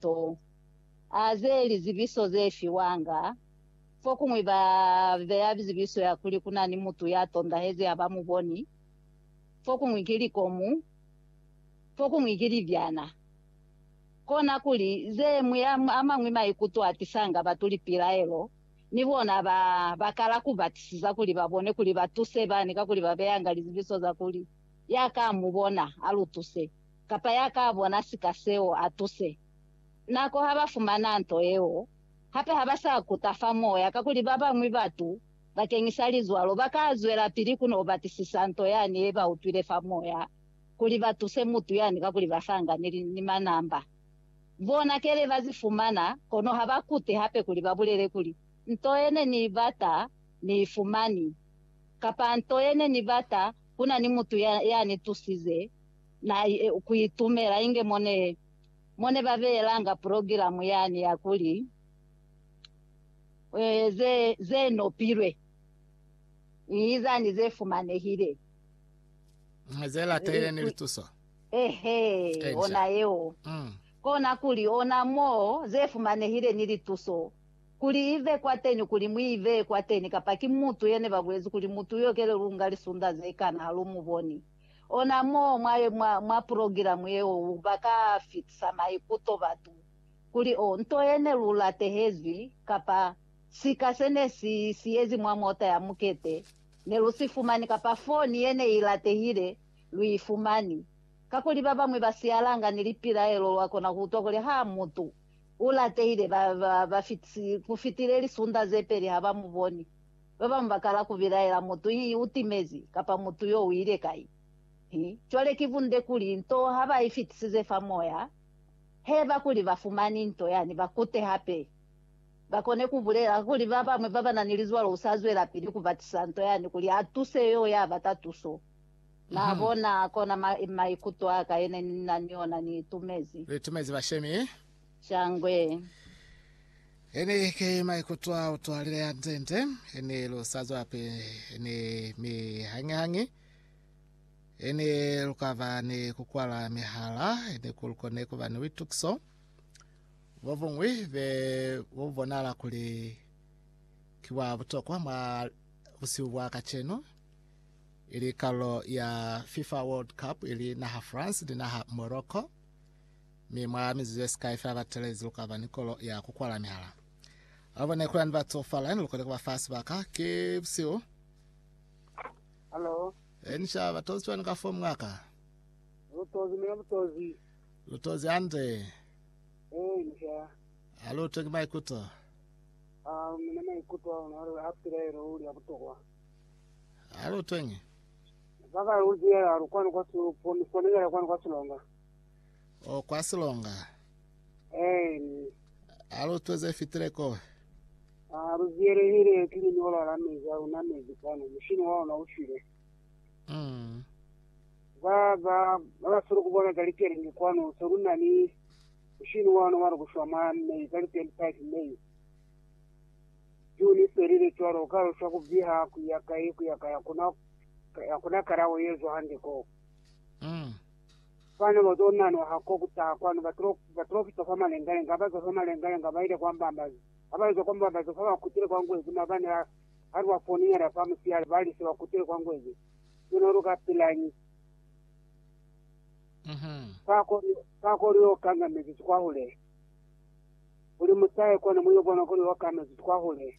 to a ze lizibiso ze fiwanga. Fokuñwi ba beya zibiso ya kuli ku na ni mutu ya tondahezi ha ba mu boni, fokuñwi ki likomu, fokuñwi ki libyana. Kona kuli, ze mwi a mañwi maikuto a tisanga batu lipilaelo, ni bona ba ba kala ku batisisa kuli ba bone kuli ba tuse bani kakuli ba beyanga lizibiso za kuli, Ya ka mu bona, a lu tuse. kapa ya ka bona sika seo a tuse. Nako ha ba fumana nto yeo, hape ha ba sa kuta fa moya kakuli ba bañwi batu bakeñisa lizwalo ba ka zwelapili ku n'o batisisa nto yani ye ba utwile fa moya kuli ba tuse mutu yani kakuli ba sangani ni manamba. Bona kele ba zi fumana, kono ha ba kute hape kuli ba bulele kuli, Nto ye ne ni i bata ni i fumani, kapa, Nto ye ne ni bata, ku na ni mutu ya ni tusize Na ye ku itumela inge mo ne, mo ne ba beelanga purogilamu yani ya kuli, Ze, ze nopilwe, Inizani ze fumanehile. Mwa ze latile ni lituso. Eehe, Enca. ona yeo. Mm. Kona kuli, ona mo ze fumanehile ni lituso, kuli i ve kwateni, kuli mu i bee kwateni, kapa ki mutu yene ba bulezi kuli mutu yo kelelunga lisunda ze kana ha lu mu boni. Ona mo mwa, mwa, mwa pulogilamu yeo ba ka fitisa maikuto batu kuli, Oh, nto ye ne lu latehezwi, kapa, Sika se ne si siyezi mwa mota ya mukete, ne lu si fumani, kapa, Foni ye ne i latehile, lu i fumani. Kakuli ba bañwi ba siyalanga ni lipilaelo, lwa kona ku utwa kuli, Ha, mutu u latehile, ba, ba, ba fitisi, ku fitile lisunda ze peli ha ba mu boni. Ba bañwi ba kala ku bilaela, Mutu yi u timezi, kapa Mutu yo u ile kai? Hi, cwale ki bunde kuli nto ha ba i fitisize fa moya, haiba kuli ba fumani nto yani, ba kute hape, ba kone ku bulela kuli ba bañwi ba ba na ni lizwalo u sa zwelapili ku batisa nto yani kuli a tuse yo ya bata tuso. Na bona? Kona maikuto a ka yene ni na ni ona, ni itumezi. Li itumezi bashemi. Shangwe. Hene ki maikuto a utwalile a nzente, hene lu sa zwa pe, hene mi hañi-hañi, hene lu ka ba ni ku kwala mihala, hene ku lu kone ku ba ni buitukiso bo buñwi be bu bonahala kuli ki bwa butokwa mwa busihu bwa kacenu, ili kalulo ya FIFA World Cup ili naha France ni naha Morocco. Mi mwa mizuzu yesikai fela batelezi lukaba ni kolo ya kukwala mihala. Abo ne kulani batsofala, ne lukoni kuba fa sibaka. Ki busihu. Halo. E, ni sha batozi cwani ka fo mwaka? Lutozi mina lutozi. Lutozi hande. E, ni sha. Alu twengi maikuto. Ah, mina maikuto a una a pilaelo uli a butokwa. Alu twengi. Baba uzi ya lukwani kwa su, po misonengela kwani kwa sulonga. O kwa silonga. Eeni. A lu tweze fitile ko. A lu ziyelehile ki linyola la mezi a lu namezi kwanu, mushini wa luna u shwile. Mm. Ba, ba, ba ba solo kubona ka likelingi kwanu, se lu na ni mushini wa luna wa lukushwa mwa May, ka li 25 May. June i felile cwalo, ka lu shwa ku viha, ku ya kai, ku ya kai, hakuna, hakuna kalao ye zwa hande ko. Mm. Fani batonna no ha ko kutaha kwanu baprofita fa malengalenga, abazo fa malengalenga baile kwa mbambazi, abazo kwa mbambazi fa bakutile kwa ngwezi, mabani a ha lwa foninyana fa musiyale bali se bakutile kwa ngwezi, sino luka pilañi? Fa kuli yo kanga mezizi kwahule, kuli mutahe kwanu muyo bona kuli yo kanga mezizi kwahule.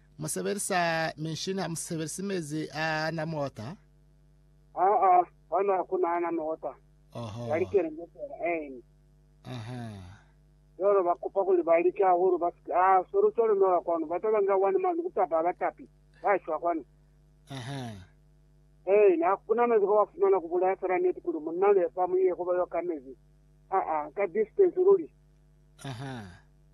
Mu sebelisa minshini, ha mu sebelisi mezi a na mota? Aa, kwanu hakuna ana mota. Oho. Ya likelembe fela. Amen. Aha. Jwalo ba kupa kuli ba lika hahulu ba sike. Ah, solo solo nola kwanu. Ba taba nga wani manu kutapa abatapi. Ba shwa kwanu. Aha. Hey, na kuna mezi kwa fumana kubulaya fela neti kuli munna le fa muye kuba yo ka mezi. Aa, ka distance luli. Aha.